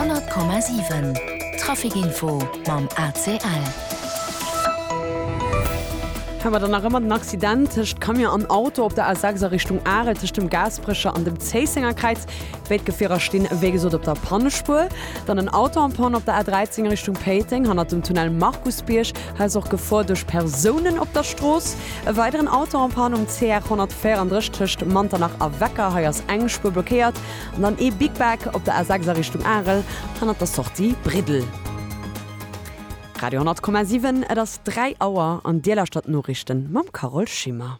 100,7 Trafic Info mam ACL. Hei war dann nach ëmmer den Accident tëscht Camion an Auto op der A6 a Richtung Arel tëscht dem Gaasperecher an dem Zéissenger Kräiz. Béid Gefierer stinn wéi gesot op der Pannespuer. Dann en Auto am Panne op der A13 a Richtung Péiteng hannert dem Tunnel Markusbierg. Hei ass och Gefor duerch Persounen op der Strooss. E weideren Auto am Panne um CR 134 tëscht Manternach a Wecker. Hei ass eng Spuer blockéiert. An dann ee Big Back op der A6 a Richtung Arel, hannert der Sortie Briddel. Radio 10,7, et ass 3 Auer an Dir lauschtert d'Noriichten mam Carole Schimmer.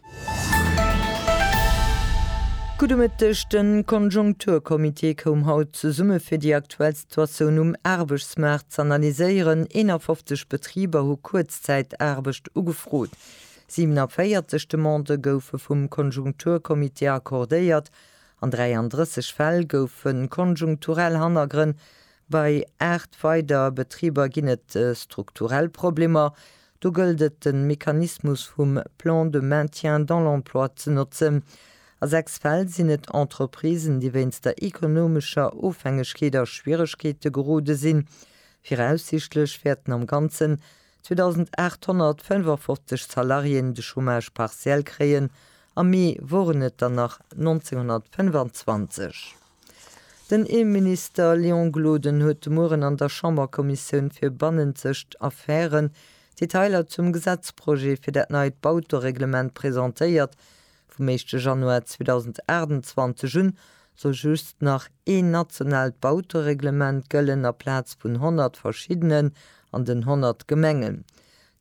Gudde Mëtteg, De Konjunkturcomité koum haut zesumme fir déi aktuell Situatioun um Aarbechtsmaart z'analyséieren. 51 Betriber hu Kuerzzäitaarbecht ugefrot, 47 Demandë goufe vum Konjunkturcomité accordéiert An 33 Fäll goufe konjunkturell Hannergrënn, bei 8 weider Betriber ginn et strukturell Problemer, do gëllt et de Mechanismus vum Plan de maintien dans l'emploi ze notzen. A 6 Fäll sinn et Entreprisen, déi wéinst der ekonomescher Ofhängegkeet a Schwieregkeete gerode sinn. Viraussiichtlech wäerten am Ganzen 2.855 Salariéen de Chômage partiel kréien, am Mee woren et der nach 1.925. Den Innenminister Léon Gloden huet de Mueren an der Chamberkommissioun fir bannenzegt Affären d'Detailer zum Gesetzprojet fir dat neit Bautereglement presentéiert, Vum éischte Januar 2028 un soll just nach een nationaalt Bautereglement gëllen aplaz vun 100 verschiddenen an den 100 Gemengen.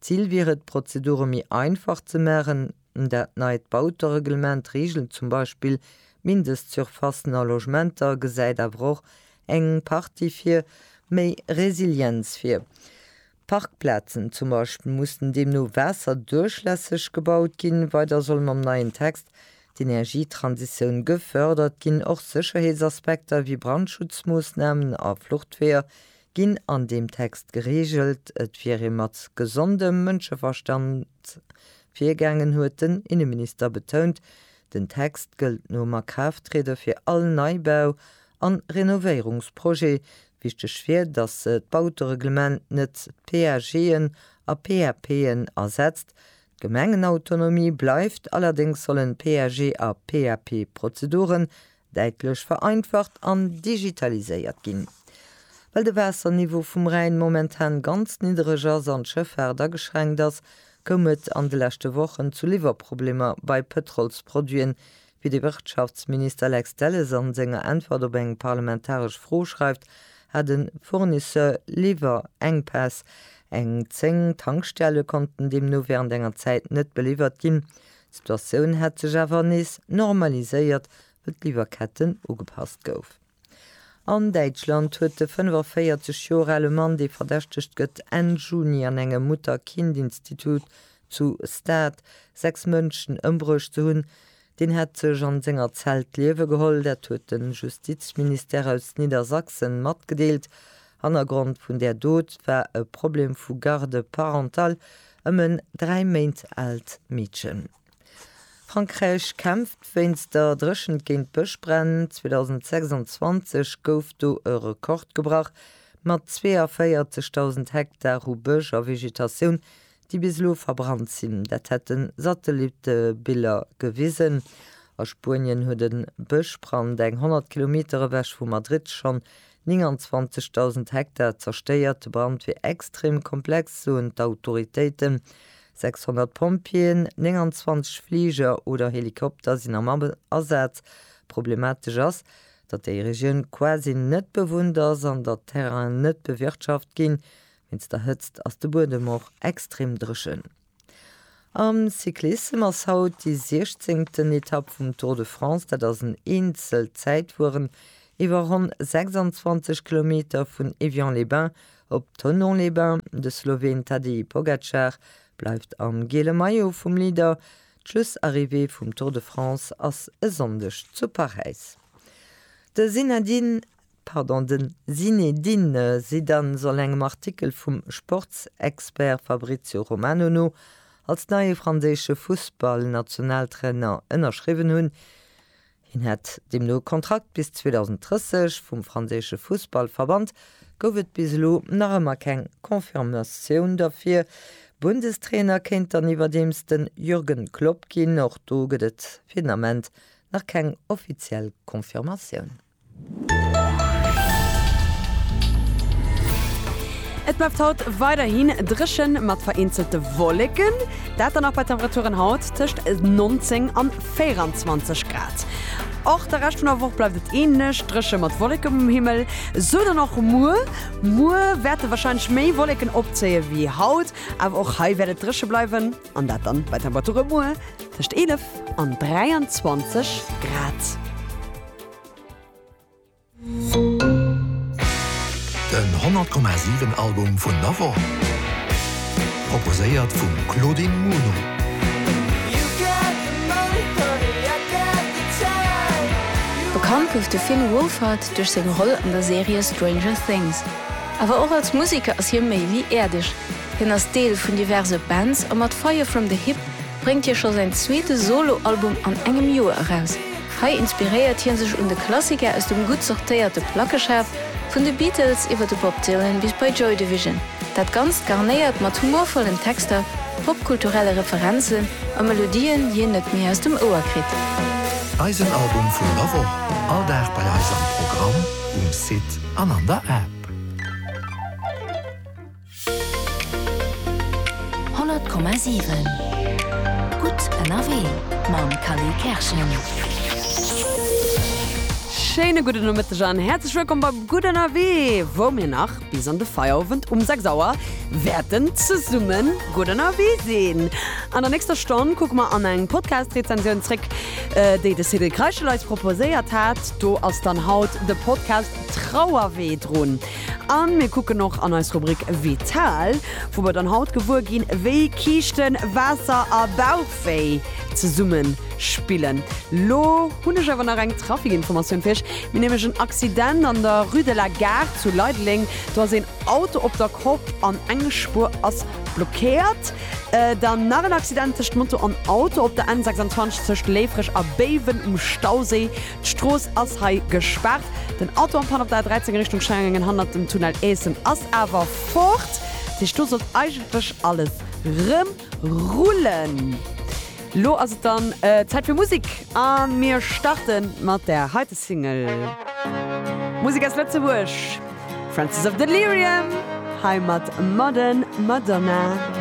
D'Zil wier et, d'Prozedure méi einfach ze maachen. Dat neit Bautereglement reegelt zum Beispill d'Mindestsurfacen a Logementer, gesäit awer och eng Partie fir méi Resilienz vir. Parkplazen zum Beispill mussen deemno waasserduerchlässeg gebaut ginn. Weider solle mam neien Text d'Energietransitioun gefördert ginn. Och Sécherheetsaspekter wéi Brandschutzmoossnamen a Fluchtweeër ginn an deem Text gereegelt. Et wier ee mat gesondem Mënscheverstand virgaangen, huet den Inneminister betount. Den Text gëllt nom Akraafttriede fir all Neibau an Renovéierungsprojet. Wichteg wier, datt d'Bautereglement net d'PAGen a PAPen ersetzt. D'Gemengenautonomie bleift, allerdéngs sollen d'PAG a PAP-Prozeduren däitlech vereinfacht an digitaliséiert ginn. Well de Waasserniveau vum Rhäin momentan ganz niddereg ass an d'Schëffaart ageschränkt ass, koum et an de leschte Wochen zu Liwwerproblemer bei Pëtrolsproduiten, Wéi de Wirtschaftsminister Lex Delles an senger Äntwert op eng parlamentaresch Fro schreift, hat en Fournisseur Liwwerenkpäss. Eng 10 Tankstelle konnten deemno während enger Zäit net beliwwert ginn. D'Situatioun hätt sech awer nees normaliséiert, wëll d'Liwwerketten ugepasst goufen. An Däitschland huet de 45 Joer ale Mann, dee verdächtegt gëtt, Enn Juni an engem Mutter-Kind-Institut zu Stade sechs Mënschen ëmbruecht ze hunn. Deen hätt sech an senger Zell d'Liewe geholl. Dat huet de Justizministère aus Niddersachsen matgedeelt. Hannergrond vun där Dot war e Problem vu Garde parentale ëm en dräi Méint aalt Meedchen. Frankräich kämpft wéinst der Dréchent géint d'Bëschbränn. 2026 gouf do e Rekord gebrach, mat 42.000 Hektar u Bësch a Vegetatioun, déi bis elo verbrannt sinn. Dat hätte Satellittebiller gewisen. A Spuenien huet e Bëschbrand eng 100 Kilometer ewech vu Madrid schonn 29.000 Hektar zerstéiert. De Brand wier extrem komplex, soen d'Autoritéiten. 600 Pompjeeën, 29 Fliger oder Helikopter sinn am Asaz. Problematesch ass, datt déi Regioun quasi net bewunnt ass an datt d'Terrainen net bewirtschaft ginn. Wéinst der Hëtzt ass de Buedem och extrem dréchen. Am Cyclissem ass haut déi siechzéngten Etapp vum Tour de France. Dat ass en Eenzelzäitfueren iwwer ronn 26 Kilometer vun Évian-les-Bains Op Thonon-les-Bains, de Sloween Tadej Pogacar bleift am giele Maillot vum Leader. D'Schlussarrivée vum Tour de France ass e Sonndeg zu Paräis. De Zinedine, pardon, de Zinédine Zidane soll engem Artikel vum Sportsexpert Fabrizio Romano no als neie franséische Fussballnationaltrainer ënnerschriwwen hunn. Hien hätt deemno e Kontrakt bis 2030. Vum franséische Fussballverband gouf et bis elo nach ëmmer keng Confirmatioun derfir. Bundestrainer kéint dann iwwerdeems de Jürgen Klopp ginn. Och do gëtt et fir den Ament nach keng offiziell Confirmatioun. Et bleift haut weiderhin dréchen mat vereenzelte Wolleken, dat dann och bei Temperaturen haut tëscht 19 an 24 Grad. Och de Rescht vun der Woch bleift et änlech dréche mat Wolleken um Himmel, sou dann och muer. Muer wäerte warscheinlech méi Wolleken opzéie wéi haut, awer och hei wäert et dréche bleiwen an dat dann bei Temperature muer tëscht 11 an 23 Grad. Den 100 Komma 7 Album vun der Woch, proposéiert vum Claudine Muno. Bekannt gouf de Finn Wolfhard duerch seng Roll an der Serie Stranger Things. Awer och als Museker ass hie méi wéi äerdeg. Hien ass Deel vun diverse Bands a mat Fire From The Hip, bréngt hie scho säin zweete Solo-Album an engem Joer eraus. Hei inspiréiert hie sech un de Klassiker aus dem gutt sortéierte Plackeschaf, vun de Beatles iwwer de Bob Dylan bis bei Joy Division. Dat Ganzt garnéiert mat humorvollen Texter, popkulturelle Referenzen a Melodien, déi een net méi aus dem Ouer kritt. Eisen Album vun der Woch, all Dag bei eis am Programm, um Site an an der App. 100,7 Gutt ënnerwee mam Kali Kerschen. Schéine gudden Nomëtteg an häerzlech wëllkomm bei Gutt ënnerwee, wou mir nach bis an de Feierowend um 6 Auer wäerten zesumme gutt ënnerwee sinn. An der nächster Stonn kucke mer an eng Podcast-Rezensioun zréck, déi de Cyril Kreischel eis proposéiert hat. Do ass dann haut de Podcast Trauerwee drun. A mir kucken och an eis Rubrik Vital, wou mer dann haut gewuer ginn, wéi Kiischten, Waasser a Bauchwéi zesumme spillen. Lo hunn ech awer nach eng Trafikinformatioun fir iech. Mir hunn nämlech en Accident an der Rue de la Gare zu Leideleng. Do ass een Auto op der Kopp an eng Spuer ass blockéiert. Dann nach en Accident tëscht Moto an Auto op der N26 tëscht Léifreg a Béiwen um Stauséi. D'Strooss ass hei gespaart. Den Auto am Panne op der A13 a Richtung Schellngen hannert dem Tunnel Eessen ass awer fort. Dat heescht, do sollt eigentlech alles rëm rullen. Lo ass et dann Zäit fir Musek a mir starte mat där heite Single. Musek aus Lëtzebuerg, Francis of Delirium hei mat Modern Madonna.